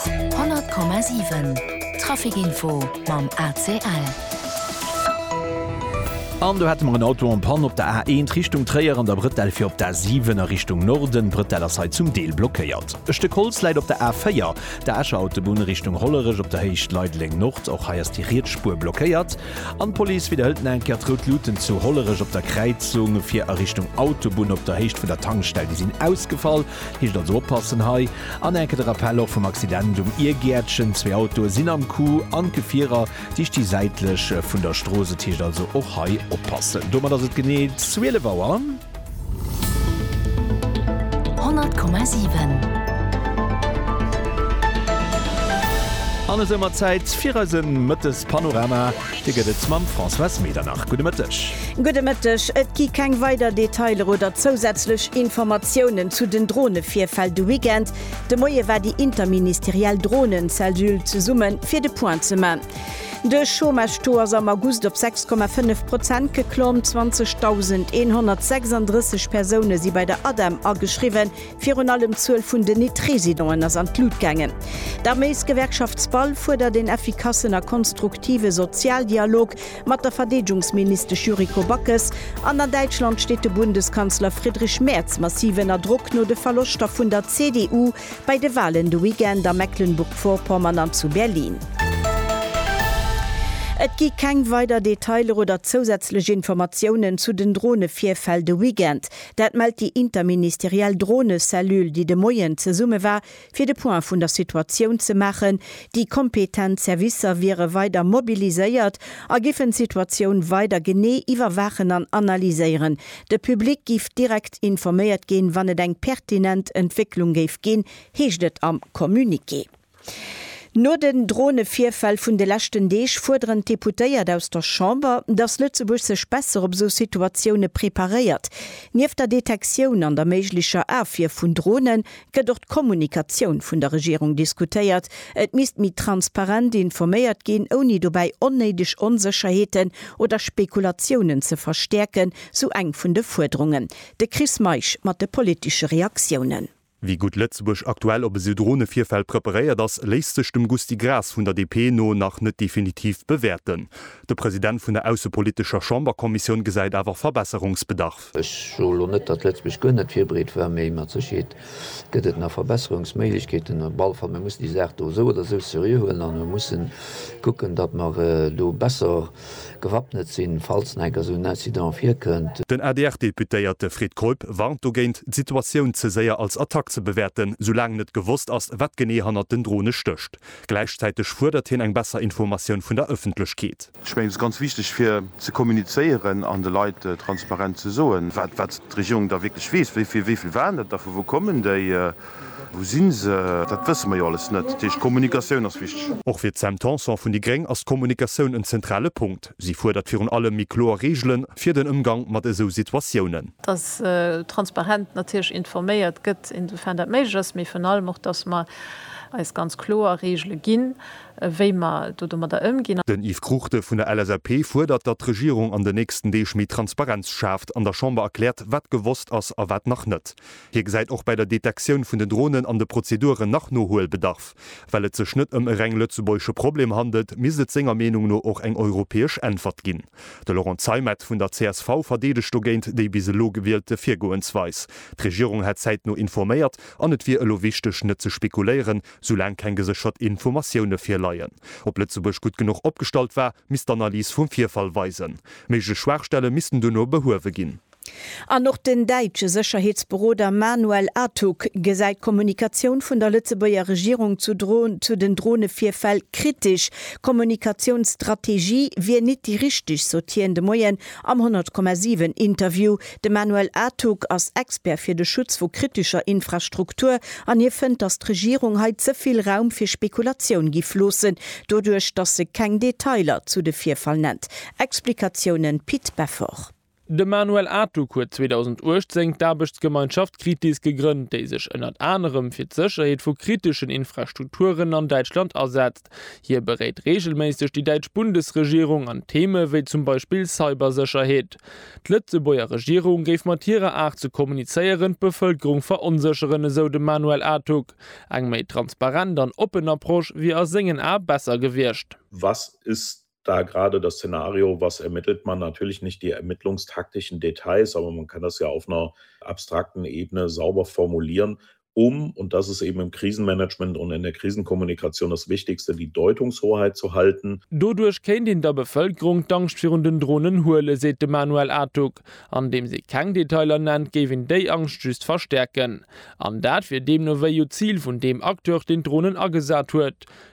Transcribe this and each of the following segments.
100,7 Trafic info mam ACL. An do hätte mer en Auto en Panne op der A1 Richtung Tréier an der Brettell fir op d'A7 a Richtung Norden. D'Brettell ass hei zum Deel blockéiert. E Stëck Holz läit op der A4, der Escher Autobunn Richtung Hollerech, op der Héicht Leideleng Nord. Och hei ass déi riets Spuer blockéiert. An d'Police widderhëlt nach eng Kéier, d'Rout Luten zu Hollerech op der Kräizung fir a Richtung Autobunn op der Héicht vun der Tankstell, déi sinn ausgefall. Hicht also oppassen hei. An enke de Rappell och vum Accident um Iergäertchen. Zwee Autoe sinn am Coup an d'Gefierer si sti säitlech vun der Strooss. Et hicht also och hei oppassen. Domat ass et genee 12 Auer. 100,7. An esou mat Zäit fir eise Mëttes-Panorama. Dir gëtt et mam Françoise Medernach. Gudde Mëtteg. Gudde Mëtteg. Et gi keng weider Detailer oder zousätzlech Informatiounen zu den Dronevirfäll de Weekend. De Moie war déi interministeriell Dronencellule zesumme fir de Point ze man. De Chômage-Taux ass am August op 6,5 Prozent geklomm. 20.136 Persoune si bei der ADEM ageschriwwen. Virun allem d'Zuel vun den Nit-Residenten ass an d'Lut gaangen. D'Arméisgewerkschaft SPAL fuerdert een effikassen a konstruktive Sozialdialog mat der Verdeedgungsministesch Yuriko Backes an an Däitschland steet de Bundeskanzler Friedrich Merz massiv ënner Drock no de Verloschter vun der CDU bei de Walen de Weekend a Mecklenburg-Vorpommern an zu Berlin. Et gi keng weider Detailer oder zousätzlech Informatiounen zu den Drone-Virfäll de Weekend. Dat mellt déi interministeriell Dronecellulle, déi de Moien zesumme war, fir de Point vun der Situatioun ze maachen. Déi kompetent Servicer wiere weider mobiliséiert a giffen d'Situatioun weider genee iwwerwaachen an analyséieren. De Public géif direkt informéiert ginn, wann et eng pertinent Entwécklung géif ginn, heescht et am Communiqué. No den Dronevirfäll vun de leschten Deeg fuerderen d'Deputéiert aus der Chamber, datt Lëtzebuerg sech besser op esou Situatioune preparéiert. Nieft der Detektioun an der méiglecher Afwier vun Drone gëtt och d'Kommunikatioun vun der Regierung diskutéiert. Et misst méi transparent informéiert ginn, ouni dobäi onnéideg Onsécherheeten oder Spekulatiounen ze verstäerken, sou eng vun de Fuerderungen. De Chris Meisch mat de politesche Reaktiounen. Wéi gutt Lëtzebuerg aktuell op esou Dronevirfäll preparéiert ass, léisst sech dem Gusty Graas vun der DP no nach net definitiv bewäerten. De President vun der aussepolitescher Chamberkommissioun gesäit awer Verbesserungsbedarf. Ech soe lo net, datt Lëtzebuerg guer net virbereet war, mee mat Sécherheet gëtt et nach Verbesserungsméiglechkeeten. Op alle Fall, mir mussen déi Saach do esou oder esou seriö huelen an mussen kucken, datt mer do besser, gewappnet sinn, falls nach enker esou en Incident virkënnt. Den ADR-Deputéierte Fred Keup warnt dogéint, d'Situatioun ze séier als Attack ze bewäerten, soulaang net gewosst ass, wat genee hannert den Drone stécht. Gläichzäiteg fuerdert hien eng besser Informatioun vun der Ëffentlechkeet. Ech mengen, et ass ganz wichteg, fir ze kommunizéieren an de Leit transparent ze soen, wat d'Regierung da wierklech weess, wéi vill waren dat da, vu wou kommen déi. Wou si se? Dat wësse mer jo alles net. Dat heescht, d'Kommunikatioun ass wichteg. Och fir d'Sam Tanson vun déi gréng ass d'Kommunikatioun en zentrale Punkt. Si fuerdert virun allem méi kloer Reegele fir den Ëmgang mat esou Situatiounen. Dass transparent natierlech informéiert gëtt, insoufern dat méiglech ass, mee virun allem och, dass mer eis ganz kloer Reegele ginn, wéi mer do domadder ëmginn. Den Yves Cruchten vun der LSAP fuerdert, datt d'Regierung an den nächsten Deeg méi Transparenz schaaft, an der Chamber erkläert, wat gewosst ass a wat nach net. Hie gesäit och bäi der Detektioun vun den Dronen an de Prozeduren nach Nohuelbedarf. Well et sech net ëm e reng lëtzebuergesche Problem handelt, misst et senger Meenung no och eng europäesch Äntwert ginn. De Laurent Zeimet vun der csv verdeedegt dogéint déi bis elo gewielte Virgoensweis. D'Regierung hätt zäitno informéiert an et wier elo wichteg net ze spekuléieren, soulaang keng geséchert Informatioune virleien. Ob Lëtzebuerg gutt genuch opgestallt war, misst d'Analys vum Virfall weisen. Méiglech Schwaachstelle missten duerno behuewe ginn. An och den däitsche Sécherheetsberoder Manuel Atug gesäit d'Kommunikatioun vun der Lëtzebuerger Regierung zu den Dronevirfäll kritesch. Kommunikatiounsstrategie wier nit déi richteg, sot hien de Moien am 100,7 Interview. De Manuel Atug ass Expert fir de Schutz vu kritescher Infrastruktur an hie fënnt, datt d'Regierung hei ze vill Raum fir Spekulatioun giff loossen, doduerch datt se keng Detailer zu de Virfall nennt. Explikatiounen Pit Beffort. De Manuel Atuk huet 2018 d'Aarbechtsgemeinschaft Kritis gegrënnt, déi sech ënnert anerem fir d'Sécherheet vu kriteschen Infrastrukturen an Däitschland asetzt. Hie beréit reegelméisseg déi däitsch Bundesregierung an Theeme wéi zum Beispill Cybersécherheet. D'Lëtzebuerger Regierung géif mat hirer Aart ze kommunizéieren d'Bevëlkerung veronsécheren, esou de Manuel Atuk. Eng méi transparent an oppen Approche wier a sengen Ae besser gewiescht. Was ist da gerade das Szenario, was ermittelt man, natürlich nicht die ermittlungstaktischen Details, aber man kann das ja auf einer abstrakten Ebene sauber formulieren, um, und das ist eben im Krisenmanagement und in der Krisenkommunikation das Wichtigste, die Deutungshoheit zu halten. Doduerch kéint een der Bevëlkerung d'Angscht virun den Dronen huelen, seet de Manuel Artug. Andeems ee keng Detailer nennt, géif een déi Angscht just verstäerken. An dat wier deemno wéi u d'Zil vun deem Acteur, deen d'Dronen agesat huet.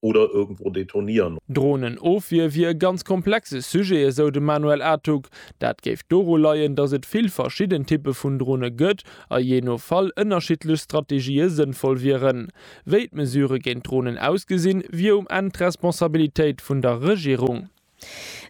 oder irgendwo detonieren. Drohnenofwier wier e ganz komplexe Sujet, esou de Manuel Artug. Dat géif doru leien, datt et vill verschidden Typpe vun Drohne gëtt a jee no Fall ënnerschiddlech Strategië sënnvoll wieren. Wéi d'Mesure géint Drohnen ausgesinn, wier um Enn d'Responsabilitéit vun der Regierung.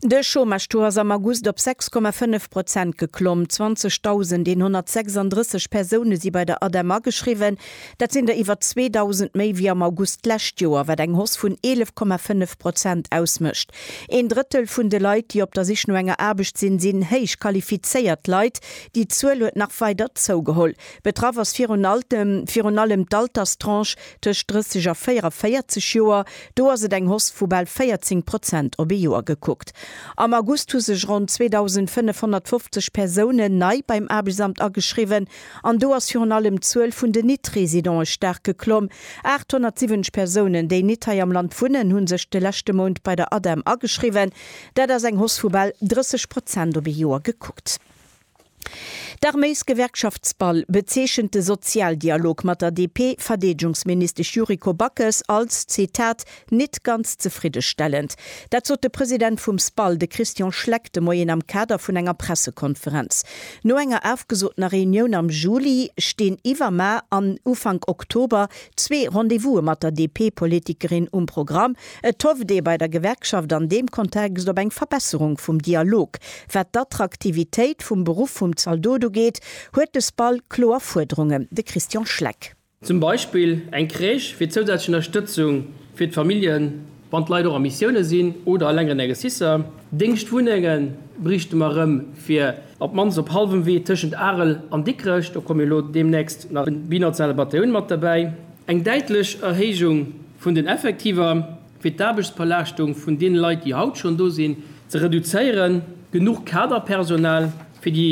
De Chômage-Taux ass am August op 6,5 Prozent geklomm. 20.136 Persoune si bei der ADEM ageschriwwen. Dat sinn der iwwer 2.000 méi wéi am August d'lescht Joer, wat eng Hausse vun 11,5 Prozent ausmécht. Een Drëttel vun de Leit, déi op der Sich no enger Aarbecht sinn, sinn héich qualifizéiert Leit. Déi Zuel huet nach weider zougeholl. Betraff ass virun allem d'Alterstranche Tëscht 30 a 44 Joer, do ass et eng Hausse vu bal 14 Prozent op ee Joer gekuckt. Am August hu sech ronn 2.550 Persounen nei beim Aarbechtsamt ageschriwwen an do ass virun allem d'Zuel vun den Nit-Residente staark geklomm. 870 Persounen, déi nit hei am Land wunnen, hu sech de leschte Mount bei der ADEM ageschriwwen. Dat ass eng Hausse vu bal 30 Prozent op ee Joer gekuckt. D'Arméisgewerkschaftsball bezeechent de Sozialdialog mat der DP-Verdeedegungsministesch Yuriko Backes als, Zitat, nit ganz zefriddestellend. Dat sot de President vum SBAL, de Christian Schleck, de Moien am Kader vun enger Pressekonferenz. No enger afgesotener Reunioun am Juli stinn iwwer Mar an Ufank Oktober zwee Rendez-Vouse mat der DP-Politikerin um Programm. Et hofft ee bei der Gewerkschaft an deem Kontext op eng Verbesserung vum Dialog. Wat d'Attraktivitéit vum Beruff vum Zaldot ugeet, huet de SPAL kloer Fuerderungen. De Christian Schleck. Zum Beispill eng Crèche fir zousätzlech Ënnerstëtzung fir d'Familljen, wann d'Leit och a Missioune sinn oder a längeren Exercicer. Déngschtwunnenge bräichte mer erëm fir op d'mannst op hallwem Wee tëschent Arel an Dikrech, do komme jo elo deemnächst nach binationale Batailloune mat derbäi, eng däitlech Erhéijung. vun den Effektiver, fir d'Aarbechtsbelaaschtung vun deene Leit, déi haut schonn do sinn, ze reduzéieren, genuch Kaderpersonal, fir déi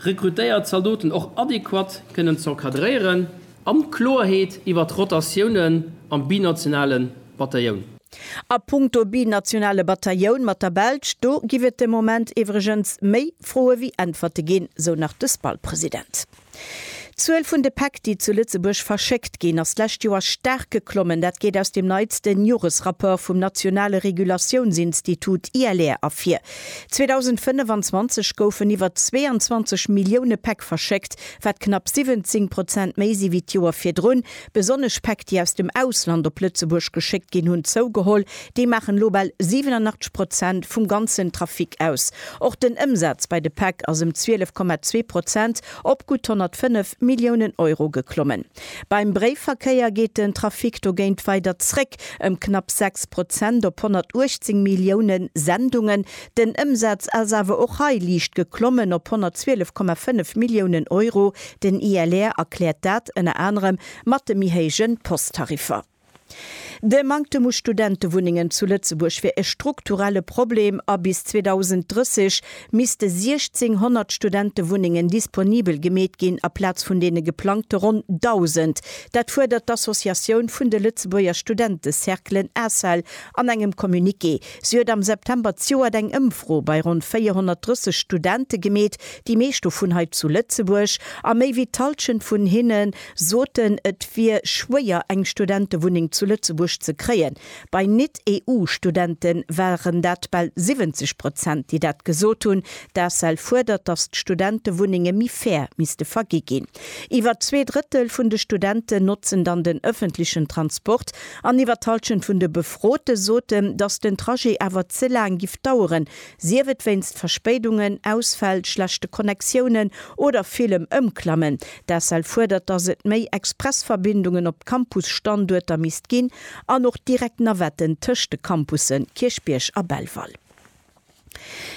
rekrutéiert Zaldoten och adequat kënnen z'encadréieren, an Kloerheet iwwert d'Rotatiounen am binationale Batailloun. A punkto binationale Batailloun mat der Belsch, do giff et de Moment iwwregens méi Froe wéi Äntwerte ginn, sou nach de SPAL-President. D'Zuel vun de Päck, déi zu Lëtzebuerg verschéckt ginn, ass d'lescht Joer staark geklommen. Dat geet aus dem neitsten Joresrapport vum nationale Regulatiounsinstitut ILR ervir. 2025 goufen iwwer 22 Millioune Päck verschéckt, wat knapp 17 Prozent méi si wéi d'Joer virdrun, Besonnesch Päck, déi aus dem Ausland op Lëtzebuerg geschéckt ginn, hunn zougeholl. Déi maachen elo bal 87 Prozent vum ganzen Trafic aus. Och den Ëmsaz bei de Päck ass ëm 12,2 Prozent op gutt 105 Milliounen Euro geklommen. Beim Bréifverkéier geet den Trafic dogéint weider zréck, ëm knapp 6 Prozent op 118 Millioune Sendungen. Den Ëmsaz ass awer och hei liicht geklommen op 112,5 Milliounen Euro, Den ILR erkläert dat ënner anerem mat de méi héije Posttariffer. De Manktem u Studentewunnengen zu Lëtzebuerg wier e strukturelle Problem a bis 2030 misste 1.600 Studentewunnengen disponibel gemeet ginn aplaz vun deene geplangte ronn 1.000. Dat fuerdert d'Associatioun vun de Lëtzebuerger Studentecerclen, ACEL, an engem Communiqué. Si huet am September ziouert eng Ëmfro bei ronn 430 Studente gemeet, déi meescht dovun hei zu Lëtzebuerg, a méi wéi d'Halschent vun hinne soten, et wier schwéier eng Studentewunneng zu Lëtzebuerg ze kréien. Bei Nit-EU-Studente waren dat bal 70 Prozent, déi dat gesot hunn. D'ACEL fuerdert, datt d'Studentewunnenge méi fair misste vergi ginn. Iwwer zwee Drëttel vun de Studenten notzen dann den ëffentlechen Transport. An iwwer d'Halschent vun de Befrote soten, datt den Trajet awer ze laang giff daueren, sief et wéinst Verspéidungen, Ausfäll, schlechte Connectiounen oder villem Ëmklammen. D'ACEL fuerdert, datt et méi Expressverbindungen op d'Campusstanduerter misst ginn an och direkt Navetten tëscht de Campusse Kierchbierg a Belval.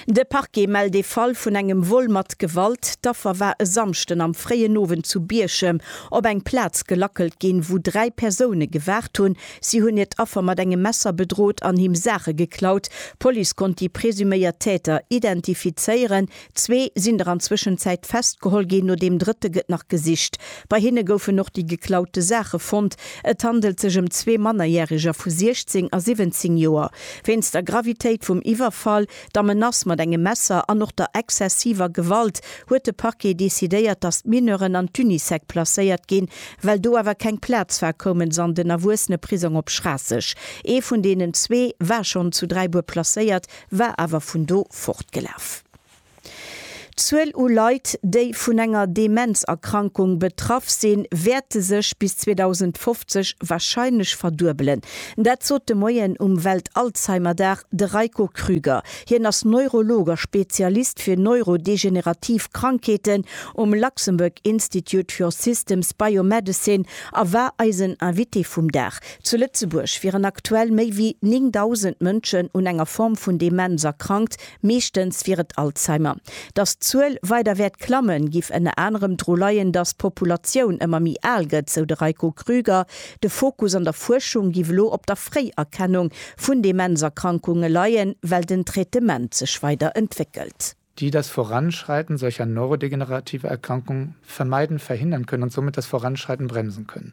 De Parquet mellt ee Fall vun engem Vol mat Gewalt. D'Affer war e Samschden am fréien Owend zu Bierchem op eng Plaz gelackelt ginn, wou dräi Persoune gewaart hunn. Si hunn hiert Affer mat engem Messer bedrot an him Saache geklaut. D'Police konnt déi presuméiert Täter identifizéieren. Zwee sinn der an Zwëschenzäit festgeholl ginn, no deem drëtte gëtt nach gesicht. Bei hinne goufen och déi geklaute Saache fonnt. Et handelt sech ëm zwee Mannerjäreger vu 16 a 17 Joer. Wéinst der Gravitéit vum Iwwerfall, der Menace mat engem Messer an och der exzessiver Gewalt huet de Parquet decidéiert, datt d'Mineuren an d'Unisec placéiert ginn. Well do awer keng Plaz war, koumen se an den Erwuesseneprisong op Schraasseg. Ee vun deenen zwee war schonn zu Dräibuer placéiert, war awer vun do fortgelaf. D'Zuel u Leit, déi vun enger Demenzerkrankung betraff sinn, wäerte sech bis 2050 warscheinlech verduebelen. Dat sot de Moien um Welt-Alzheimer-Dag de Reiko Krüger. Hien ass Neurolog a Spezialist fir neurodegenerativ Krankheeten um Luxembourg Institute for Systems Biomedicine a war eisen Invité vum Dag. Zu Lëtzebuerg wieren aktuell méi wéi 9.000 Mënschen un enger Form vun Demenz erkrankt, Meeschtens wier et Alzheimer. Datt d'Zuel weider wäert klammen, giff ënner anerem dru leien, datt d'Populatioun ëmmer méi al gëtt, sou de Reiko Krüger. De Fokus an der Fuerschung giff elo op der Fréierkennung vun Demenzerkrankunge leien, well den Traitement sech weider entwéckelt. die das Voranschreiten solcher neurodegenerativer Erkrankungen vermeiden, verhindern können und somit das Voranschreiten bremsen können.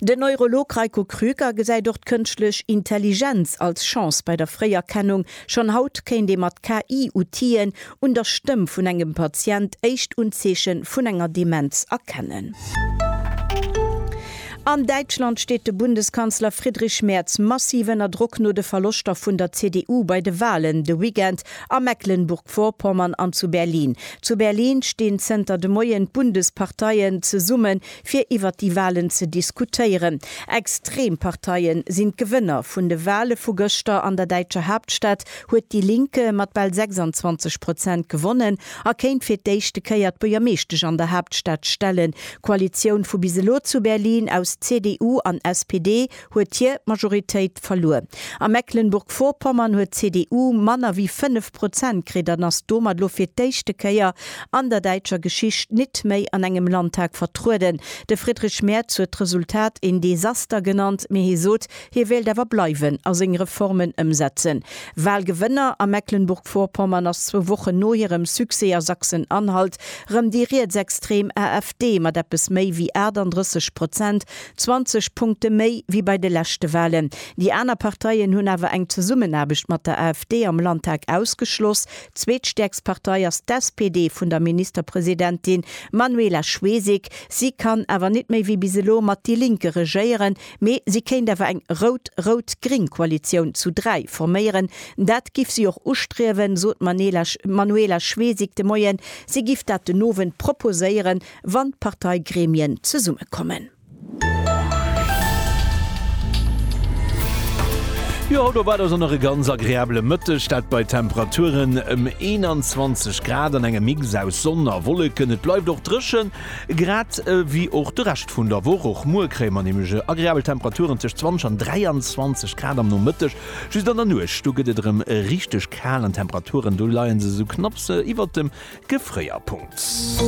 Den Neurolog Reiko Krüker gesäit och d'Kënschtlech Intelligenz als Chance bei der Fréierkennung. Schonn haut kéint ee mat KI-Outien un der Stëmm vun engem Patient éischt Unzeeche vun enger Demenz erkennen. An Däitschland steet de Bundeskanzler Friedrich Merz massiv ënner Drock no de Verloschter vun der CDU bei de Walen de Weekend a Mecklenburg-Vorpommern an zu Berlin. Zu Berlin stinn zënter de Moien d'Bundesparteien zesumme fir iwwert déi Walen ze diskutéieren. Extrem Parteien sinn d'Gewënner vun de Wale vu gëschter. An der däitscher Haaptstad huet Die Linke mat bal 26 Prozent gewonnen a kéint fir d'éischte Kéier d'Buergermeeschtesch an der Haaptstad stellen. D'Koalitioun vu bis elo zu Berlin aus CDU an SPD huet hir Majoritéit verluer. A Mecklenburg-Vorpommern huet d'CDU manner wéi 5 Prozent kritt an ass domat elo fir d'éischte Kéier an der däitscher Geschicht nit méi an engem Landtag vertrueden. De Friedrich Merz huet d'Resultat een Desaster genannt, mee hie sot, hie wéilt awer bleiwen a seng Reformen ëmsetzen. Wahlgewënner a Mecklenburg-Vorpommern ass zwou Wochen no hirem Succès a Sachsen-Anhalt rëm déi rietsextrem AfD mat eppes méi wéi 38 Prozent 20 Punkte méi wéi bei de leschte Walen. Déi aner Parteien hunn awer eng Zesummenaarbecht mat der AfD am Landtag ausgeschloss. Zweetstäerkst Partei ass d'SPD vun der Ministerpresidentin Manuela Schwesig. Si kann awer net méi wéi bis elo mat déi Linke regéieren, mee si kéint awer eng rout-rout-gring Koalitioun zu 3 forméieren. Dat giff si och ustriewen, sot d'Manuela Schwesig de Moien. Si giff dat den Owend proposéieren. wann d'Parteigremien zesummekommen. Jo, haut op Adasch an nach e ganz agreabele Mëtteg, dat bei Temperaturen ëm 21 Grad an engem Mix aus Sonn a Wolleken. Et bleift och dréchen, grad ewéi och de Rescht vun der Woch. Och muer kréie mer nämlech agreabel Temperaturen tëscht 20 an 23 Grad am Nomëtteg. Just an der Nuecht, do gëtt et erëm richteg kal an d'Temperaturen, do leie se sou knapps iwwert dem Gefréierpunkt.